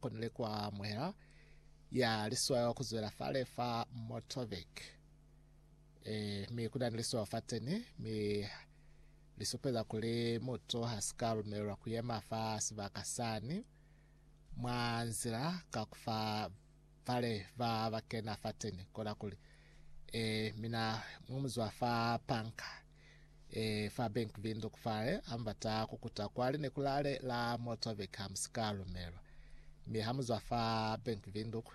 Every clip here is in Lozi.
konile kwa amuhela ya liswao ku zwela fale fa Motovik. E, mi kuna ni liswao fa teni, mi lisupeza kuli mutu ha si ka lumelelwa ku yema fa sibaka sani mwa nzila ka kufa vale va ba kena fa teni. Kona kuli, E, mina mwa muzwa fa panka. E fa Bank Windhoek fale ambata kukuta kwa linekulale la Motorbike hamusika lumelwa. Mi hamuzwa fa Bank Windhoek,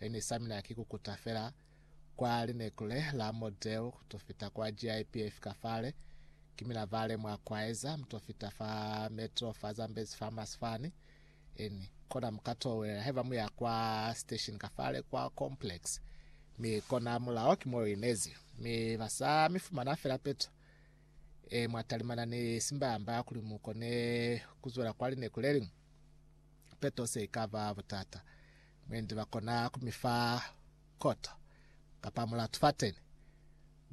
eni samina ki kukuta fela kwa linekule la Model to fita kwa GIP fika fale. Kimina vale mwa kwaeza mto fita fa Metro fa Zambezi Farmers Fani. N. Kona mu ka towelela haiba mu ya kwa station ka fale kwa complex, mi kona mulao ki mo inezi, mi ba sa mi fumana fela peto e mwa talimana ni simbamba kuli mu kone ku zwela kwa lineku le liñwi. Peto se i ka ba butata, mwendi ba kona ku mi fa koto kapa mulatu fateni.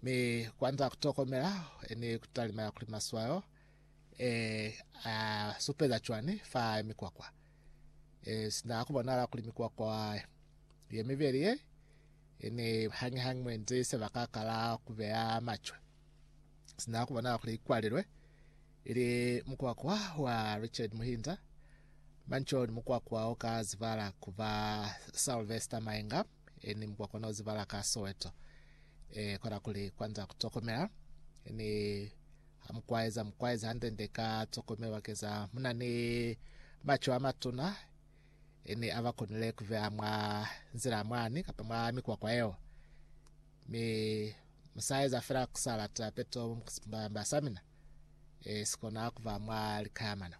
Mi kwanza ku tokomela ni ku talimela kuli maswayo Ee, a supeza cwani fa mikwakwa? Ee, sina ku bonala kuli mikwakwa ye mibeli ye e ne hañihañi mwenzi sebaka kala ku beya macwe. Sina ku bonala kuli kwalilwe ili mukwakwa wa Richard Muhinza, Manchon mukwakwa o ka zibala ku ba Sylvester Mainga, e ni mukwa kona uzibala ka Soweto e kona kuli kwanza kutokomela e ni amukwaeza mukwaeza ndende ka tokomelo bakeza muna ni macho amatuna e ni abakonile kuvea mwa nzila mwani kapa mwa mikwakwa eo mi musaeza fela kusalata peto mbasamina e sikona kuva mwa likayamana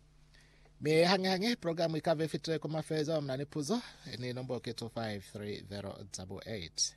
Mi hañi-hañi program ikaba ifitile ku mafelezo, muna ni puzo, ni nombo ki 2530 double eight.